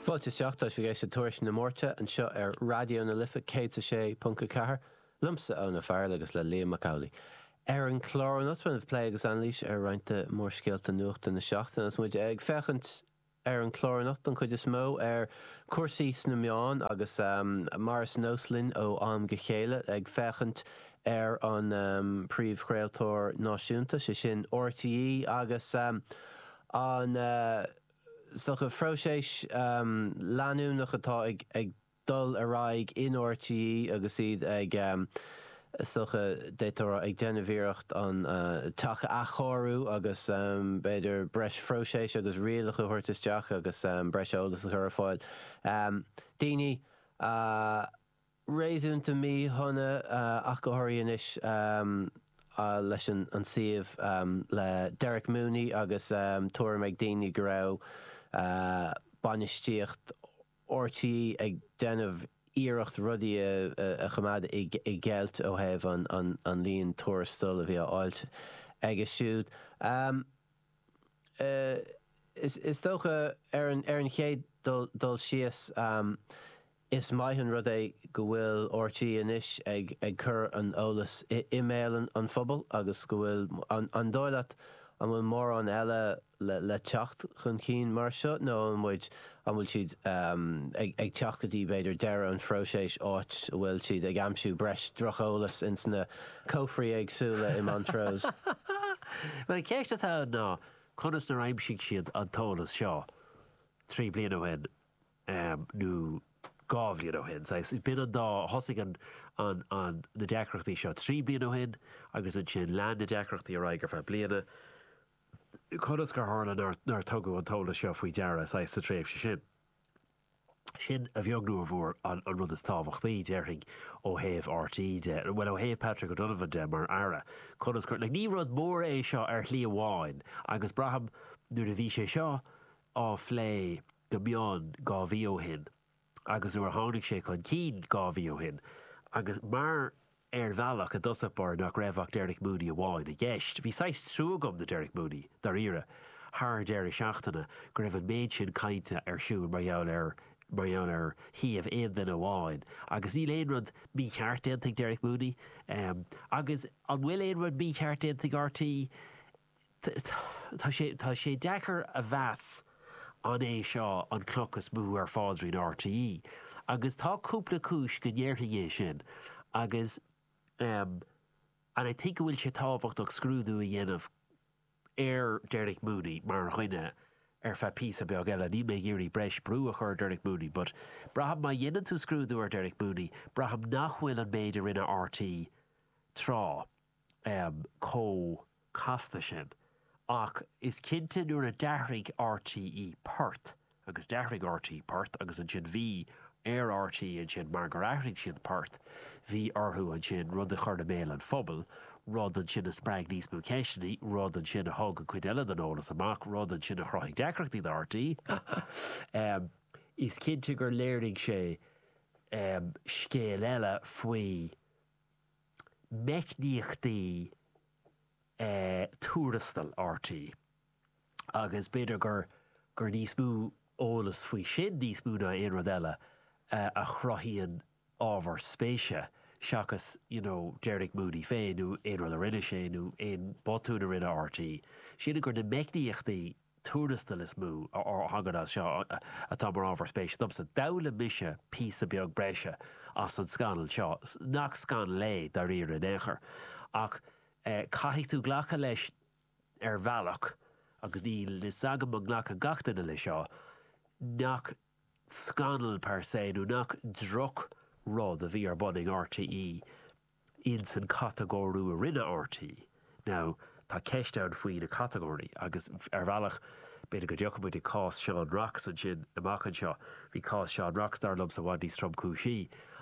Fáilte isteach, tá sibh ag éisteacht le Tuairisc na Máirte anseo ar Raidió na Life 106.4, liomsa Úna Farrell agus le Liam Mac Amhlaigh. Ar an chlár anocht beidh plé agus anailís ar roinnt de mhórscéalta nuachta na seachtaine agus muid ag féachaint ar an chlár anocht don chuid is mó ar chúrsaí sna meáin agus mar is nós linn ó am go chéile ag féachaint ar an bpríomhchraoltóir náisiúnta, sé sin RTÉ agus an is dócha próiseas leanúnach atá ag dul ar aghaidh in RTÉ agus iad ag is dócha b'fhéidir ag déanamh iarracht an teach a athchóiriú agus b'fhéidir breis próiseas agus rialachas a thabhairt isteach agus breis eolais a chur ar fáil. Daoine réasúnta míshona ach go háirithe anois leis an suíomh le Derek Mooney agus tuairim ag daoine go raibh bainistíocht RTÉ ag déanamh iarracht rudaí a choimeád i gceilt ó thaobh an líon tuarastal a bhí á fháilt aige siúd. Is dócha, ar an chéad dul síos, Is maith an rud é go bhfuil RTÉ anois ag cur an eolais i mbéal an phobail agus go bhfuil. An dóigh leat an bhfuil mórán eile le teacht chun cinn mar seo nó an bhfuil siad ag teacht go dtí b'fhéidir deireadh an phróiséis áit a bhfuil siad ag aimsiú breis droch-eolais ins na cófraí éagsúla i Montrose? Bhuel, an cheist atá ann ná conas nar aimsigh siad an t-eolas seo trí bliana ó shin? nó dhá bhliain ó shin. Saghas, b'in an dá, thosaigh an, an, an, na deacrachtaí seo trí bliana ó shin agus ansin lean na deacrachtaí ar aghaidh ar feadh bliana. Conas gur tharla nár, nár tugadh an t-eolas seo faoi deara, saghas, sa tréimhse sin? Sin, a bheag nó a mhór, an, an rud is tábhachtaí, déarfainn, ó thaobh RTÉ de, bhuel, ó thaobh Patrick O'Donovan de mar Aire. Conas gur, like, ní rud mór é seo ar shlí amháin agus braithim nuair a bhí sé seo á phlé, go mion dhá mhí ó shin agus nuair a tháinig sé chun cinn dhá mhí ó shin agus mar ar bhealach i dtosach báire nach raibh ach Derek Mooney amháin i gceist. Bhí saghas trua agam do Derek Mooney, dáiríre, thar deireadh seachtaine go raibh an méid sin cainte ar siúl mar gheall air, mar gheall ar shuíomh aon duine amháin agus níl aon rud mícheart déanta ag Derek Mooney agus an bhfuil aon rud mícheart déanta ag RTÉ? Tá sé deacair a mheas an é seo an chloch is mó ar phaidrín RTÉ, agus tá cúpla cúis go ndéarfainn é sin, agus and I think go bhfuil sé tábhachtach scrúdú a dhéanamh ar Derek Mooney mar dhuine ar feadh píosa beag eile. Níl mé ag iarraidh breis brú a chur ar Derek Mooney, but braithim má dhéanann tú scrúdú ar Derek Mooney, braithim nach bhfuil an méid a rinne RTÉ tráth, chomh casta sin. Ach is cinnte nuair a d'athraigh R.T.E. port, agus d'athraigh R.T.E. port, agus ansin bhí ar R.T.E. ansin mar gur athraigh siad port, bhí orthu ansin rud a chur i mbéal an phobail, rud ansin a spreag níos mó ceisteanna, rud ansin a thug an chuid eile den eolas amach, rud ansin a chruthaigh deacrachtaí do R.T.E. Is cinnte gur léirigh sé scéal eile faoi. meicníochtaí tuarastail RTÉ, agus b'fhéidir gur gur níos mó eolas faoi sin, níos mó ná aon rud eile, a chruthaíonn ábhar spéise seachas you know Derek Mooney féin nó aon rud a rinne sé nó aon bhotún a rinne RTÉ, sin gur na meicníochtaí tuarastail is mó a thagann as seo atá mar ábhar spéise domsa. D'fhoghlaim mise píosa beag breise as an scannal seo, nach scannal é, dáiríre, in aon chor, ach caithfidh tú glacadh leis ar bhealach, agus níl a fhios agam an nglacfaidh gach duine leis seo, nach scannal per se nó nach drochrud a bhí ar bun ag RTÉ. ins an catagóiriú a rinne RTÉ. Now, tá ceist ann faoi na catagóirí agus, ar bhealach, b'fhéidir go dtiocfaidh muid ar chás Seán Rocks ansin amach anseo. Bhí cás Seán Rocks, dar liomsa, i bhfad níos tromchúisí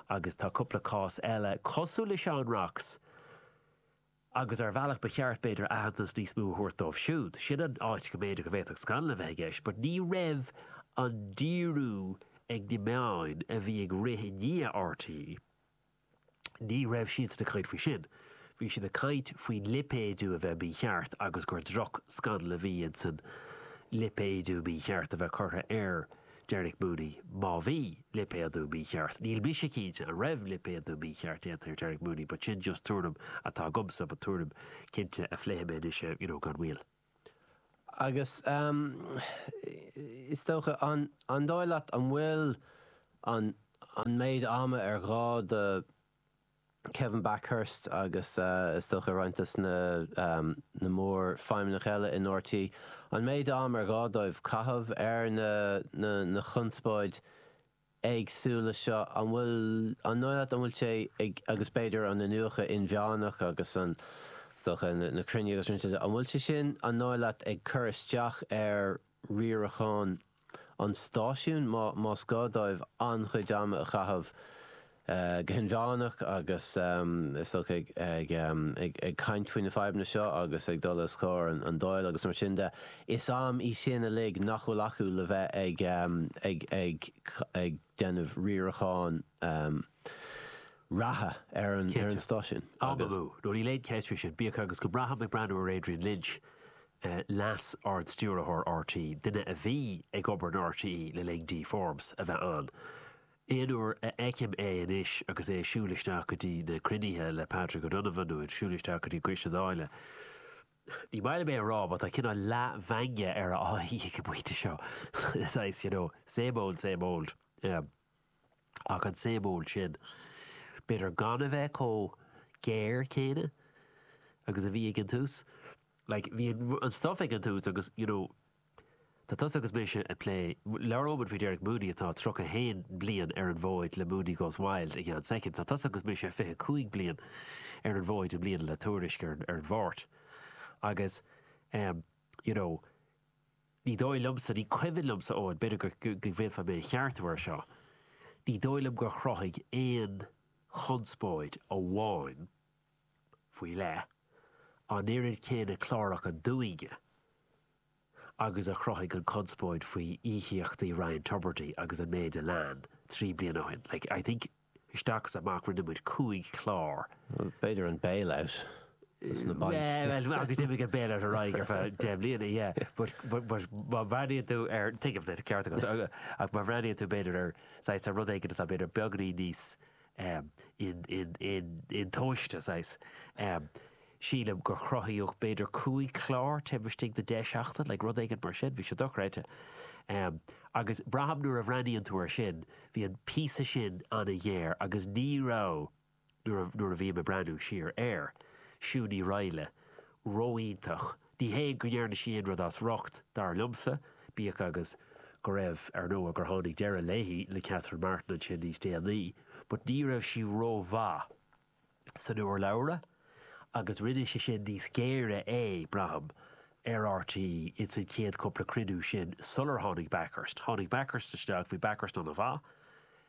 agus tá cúpla cás eile cosúil le Seán Rocks agus, ar bhealach, ba cheart, b'fhéidir, aitheantas níos mó a thabhairt dóibh siúd. Sin an áit go mb'fhéidir go bhféadfadh scannal a bheith i gceist but ní raibh an díriú ag na meáin a bhí ag rith i ndiaidh RTÉ, Ní raibh siad ag caint faoi sin. Bhí siad ag caint faoin lipéadú a bheith mícheart agus gur drochscannal a bhí ins an lipéadú mícheart a bheith curtha ar Derek Mooney. Má bhí lipéadú mícheart, níl mise cinnte an raibh lipéadú mícheart déanta ar Derek Mooney but sin just tuairim atá agamsa but tuairim cinnte a phléifidh mé anois ar, you know, gan mhoill. Agus is dócha, an dóigh leat an bhfuil an méid ama ar ghá do Kevin Bakhurst agus is dócha roinnt de na mórfheidhmeannaigh eile in RTÉ, an méid ama ar ghá dóibh caitheamh ar an chonspóid éagsúla seo, an bhfuil, an dóigh leat, an bhfuil sé ag, agus b'fhéidir an iniúchadh inmheánach agus an, is dócha, na cruinnithe agus mar sin de, an bhfuil sé sin, an dóigh leat, ag cur isteach ar riarachán an stáisiúin, má, más gá dóibh an-chuid ama a chaitheamh go hinmheánach agus is dócha ag caint faoi na fadhbanna seo agus ag dul os comhair an Dáil agus mar sin de. Is am í sin uilig nach bhfuil acu le bheith ag déanamh riaracháin reatha ar an stáisiún. Ó no, níl aon cheist faoi sin, bíodh agus go mbraithim ag breathnú ar Adrian Lynch, Leas-Ardstiúrthóir RTÉ, duine a bhí ag obair in RTÉ le linn Dee Forbes a bheith ann, Aon uair a fheicim é anois agus é ag siúl isteach go dtí na cruinnithe le Patrick O'Donovan nó ag siúl isteach go dtí Coiste na Dáile, ní maith liom é a rá but tá cineál leathmheangadh ar a aghaidh ag an bpointe seo, saghas, you know, same old, same old. Ach an same old sin, b'fhéidir gan a bheith chomh géar céanna agus a bhí ag an tús. Like, bhí an stuif ag an tús agus, you know, Tá tusa agus mise ag plé, labhróidh muid faoi Derek Mooney atá 31 bliain ar an bhfód le Mooney Goes Wild i gceann soicind. Tá tusa agus mise 25 bliain ar an bhfód i mbliana le Tuairisc ar an Mháirt. Agus, you know, ní dóigh liomsa, ní cuimhin liomsa, Eoin, b'fhéidir go bhféadfá mé a cheartú air seo, ní dóigh liom gur chruthaigh aon chonspóid amháin, faoi leith, an oiread céanna cláracha dúinne, agus a chruthaigh an chonspóid faoi íocaíochtaí Ryan Tubridy agus an méid a lean, trí bliana ó shin. Like, I think, isteach is amach, rinne muid cúig chlár. B'fhéidir an bailout as na bainc. Yeah, well, agus d'imigh an bailout ar aghaidh ar feadh deich mbliana, yeah. But, but, but, má bhreathnaíonn tú ar, tuigim duit, ceart agat, ach má bhreathnaíonn tú b'fhéidir ar, saghas, ar rud éigin atá b'fhéidir beagainín níos, Um in, in, in, intomhaiste, saghas. Um Sílim gur chruthaíodh b'fhéidir cúig chlár taobh istigh de deich seachtain, like rud éigin mar sin, bhí sé dochreidte. Um agus braithim nuair a bhreathnaíonn tú ar sin, bhí an píosa sin an-ghéar agus ní raibh, nuair a, nuair a bhím ag breathnú siar air, Siún Ní Raghallaigh ró-iontach, Ní hé go ndearna sí aon rud as riocht, dar liomsa, bíodh agus go raibh, ar ndóigh, gur tháinig deireadh léi le Catherine Martin ansin níos déanaí, but ní raibh sí rómhaith san urlabhra agus rinne sé sin níos géire é, braithim, ar RTÉ ins an chéad cúpla cruinniú sin sular tháinig Bakhurst. Tháinig Bakhurst isteach, bhí Bakhurst an-mhaith.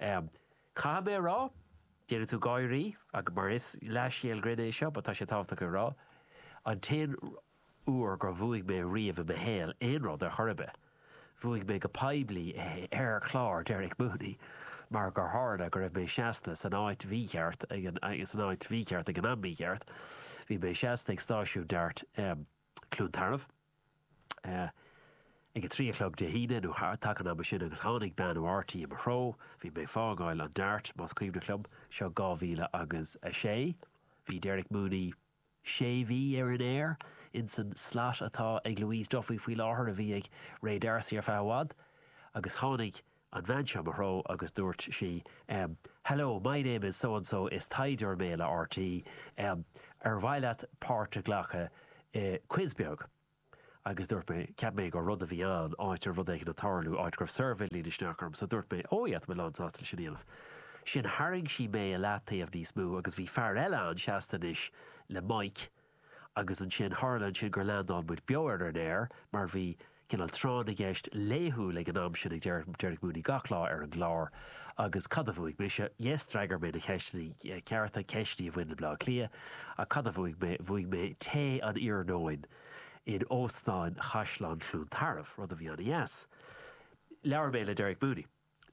Caithfidh mé a rá, déanfaidh tú gáirí, mar is leathscéal grinn é seo, ach tá sé tábhachtach é a rá, an t-aon uair gur bhuaigh mé riamh i mo shaol aon rud ar chor ar bith, bhuaigh mé go poiblí é ar chlár Derek Mooney mar gur tharla go raibh mé seasta san áit mhícheart san áit mhícheart ag an am mícheart. Bhí mé seasta ag stáisiún DART. Cluain Tarbh, ag a trí a chlog Dé hAoine nó i dtaca an ama sin agus tháinig bean ó RTÉ i mo threo, bhí mé ag fágáil an DART, más cuimhin liom, seo 2006, bhí Derek Mooney sé mhí ar an aer insan slat atá ag Louise Duffy faoi láthair a bhí ag Ray D'Arcy ar feadh i bhfad agus tháinig an bhean seo i mo threo agus dúirt sí, em, hello, my name is so and so, is taighdeoir mé le RTÉ, em, ar mhaith leat páirt a ghlacadh i quiz beag? Agus dúirt mé, cheap mé gur rud a bhí ann, áit ar rud éigin ag tarlú, áit go raibh suirbhéín isteach orm, so dúirt mé, oh yeah, tá mé lánsásta le sin a dhéanamh. Sin, tharraing sí mé i leataobh níos mó agus bhí fear eile ann seasta anois le mic, agus ansin tharla ansin gur leandáil muid beo ar an aer mar bhí cineál tráth na gceist laethúil ag an am sin ag Derek Mooney gach lá ar an gclár agus cad a bhuaigh mise? Yes, d'fhreagair mé na ceisteanna cearta, ceisteanna a bhain le Baile Átha Cliath ach cad a bhuaigh mé? Bhuaigh mé tae an iarnóin in Óstán Chaisleán Chluain Tarbh, rud a bhí an-deas. Labhair mé le Derek Mooney.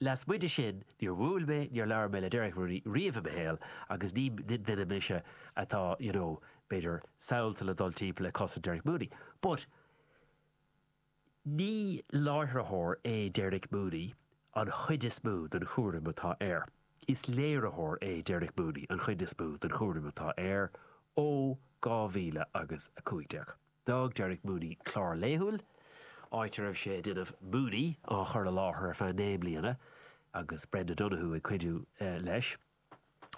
Lasmuigh de sin, níor bhuail mé, níor labhair mé le Derek Mooney riamh i mo shaol agus ní duine mise atá, you know, b'fhéidir, samhlaithe le dul timpeall ag cosaint Derek Mooney. But, ní láithreoir é Derek Mooney an chuid is mó den chúram atá air. Is léiritheoir é Derek Mooney an chuid is mó den chúram atá air ó 2015. D'fhág Derek Mooney clár laethúil, áit a raibh sé ag déanamh 'Mooney' á chur i láthair ar feadh naoi mbliana, agus Brenda Donohue ag cuidiú leis,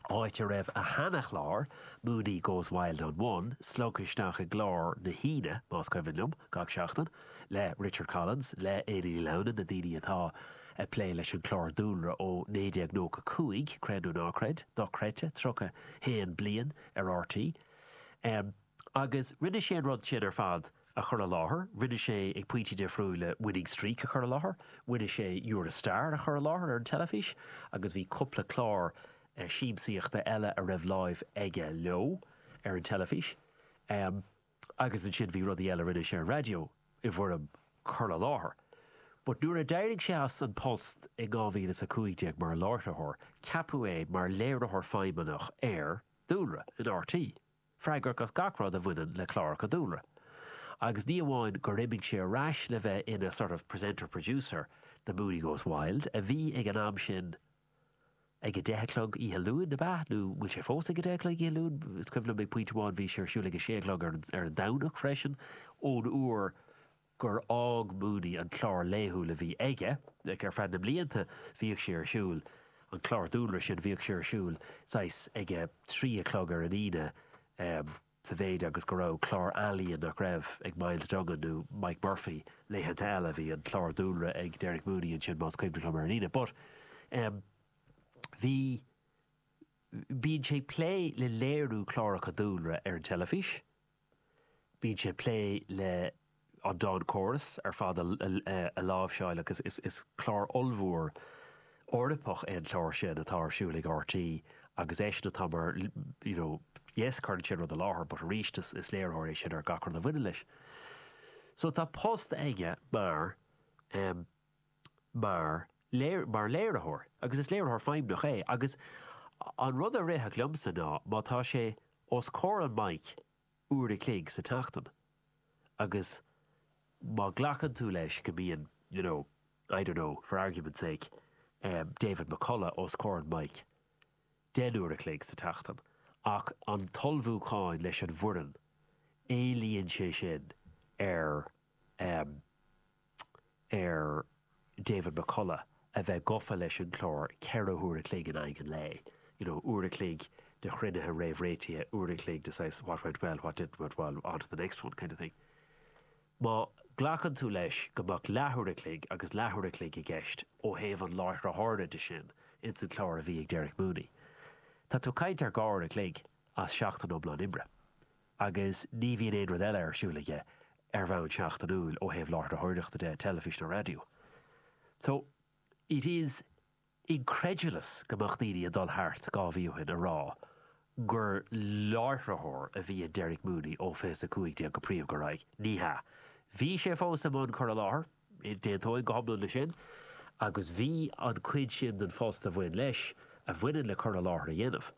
áit a raibh a sheana-chlár, 'Mooney goes wild on one', slogtha isteach i gclár na hAoine, más cuimhin liom, gach seachtain, le Richard Collins, le Éanna Ní Lamhna, na daoine atá ag plé leis an chlár dúlra ó 1995, creid nó ná creid, dochreidte, 31 bliain ar RTÉ. Agus rinne sé an rud sin ar fad a chur i láthair, rinne sé, ag pointí difriúila, Winning Streak a chur i láthair, rinne sé You're a Star a chur i láthair ar an teilifís agus bhí cúpla clár siamsaíochta eile a raibh láimh aige leo ar an teilifís. Agus ansin bhí rudaí eile a rinne sé ar an raidió i bhfoirm cur i láthair. But nuair a d'éirigh sé as an post in 2015 mar láithreoir, ceapadh é mar léiritheoir feidhmeannach ar dúlra in RTÉ. freagrach as gach rud a bhaineann le cláracha dúlra, agus ní amháin gur imigh sé ar ais le bheith ina sort of presenter-producer de Mooney Goes Wild, a bhí ag an am sin ag a deich a chlog oíche Luain, ab ea? Nó an bhfuil sé fós ag a deich a chlog oíche Luain? Is cuimhin liom ag pointe amháin bhí sé ar siúl ag a sé a chlog ar an Domhnach freisin, ón uair. gur fhág Mooney an chlár laethúil a bhí aige, ag, ar feadh na mblianta bhíodh sé ar siúl, an chlár dúlra sin, bhíodh sé ar siúl saghas ag a trí a chlog ar an Aoine em, sa mhéid agus go raibh chlár ealaíon nach raibh ag Myles Dungan nó Mike Murphy, laethanta eile bhí an chlár dúlra ag Derek Mooney ansin más cuimhneach liom ar an Aoine but em bhí, bíonn sé plé le léiriú cláracha dúlra ar an teilifís. Bíonn sé plé le an dawn chorus ar fad a láimhseáil agus is clár ollmhór Eorpach é an clár sin atá ar siúl ag RTÉ agus eisean atá mar you know yes cuireann sé rud i láthair but arís is léiritheoir é sin ar gach rud a bhaineann leis. So tá post aige mar eh, mar mar léiritheoir, agus is léiritheoir feidhmiúcháin é, agus an rud a rithfeadh liomsa ná má tá sé os comhair an mic uair a chloig sa tseachtain agus má ghlacann tú leis go mbíonn, you know, I don't know, for argument's sake, David McCullagh os comhair an mic deich n-uair a chloig sa tseachtain, ach an t-ullmhúcháin leis an bhfoireann, éilíonn sé sin ar ar David McCullagh a bheith gofa leis an chlár ceithre huaire chloig in aghaidh an lae, you know uair a chloig de chruinnithe réamhréitithe, uair a chloig de saghas what went well, what didn't went well, on to the next one kind of thing. Má ghlacann tú leis go mbeadh leathuair a chloig agus leathuair a chloig i gceist ó thaobh an láithreora de sin ins an chlár a bhí ag Derek Mooney, tá tú ag caint ar dhá uair a chloig as seachtain iomlán oibre. agus ní bhíonn aon rud eile ar siúl aige ar bhonn seachtainiúil ó thaobh láithreoireachta de, teilifís nó raidió. So, it is incredulous go mbeadh daoine ag dul thart dhá mhí ó shin a rá gur láithreoir a bhí in Derek Mooney ó fiche is a 15 go príomh go raibh. Ní hea. Bhí sé fós i mbun cur i láthair, d'aontóinn go hiomlán le sin, agus bhí an chuid sin den phost a bhain leis, a bhaineann le cur i láthair a dhéanamh,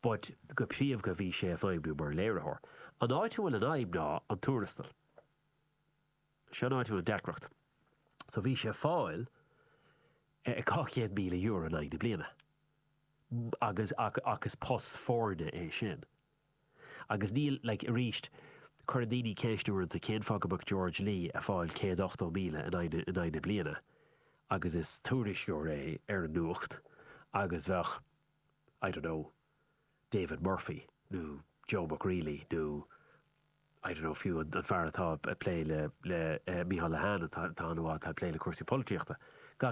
but go príomha bhí sé a feidhmiú mar léiritheoir. An áit a bhfuil an fhadhb ná an tuarastal. Seo an áit a bhfuil an deacracht. So bhí sé a fáil €200,000 in aghaidh na bliana agus ach ach is post foirne é sin. Agus níl like arís cuireann daoine ceist uaireanta cén fáth go mbeadh George Lee a fáil 180,000 in aghaidh in aghaidh na bliana agus is tuairisceoir é ar an nuacht agus bheadh I don't know, David Murphy nó Joe Mag Raollaigh nó I don't know fiú an fear atá ag plé le Micheál Lehane an t-am atá atá ag plé le cúrsaí polaitíochta. Gach.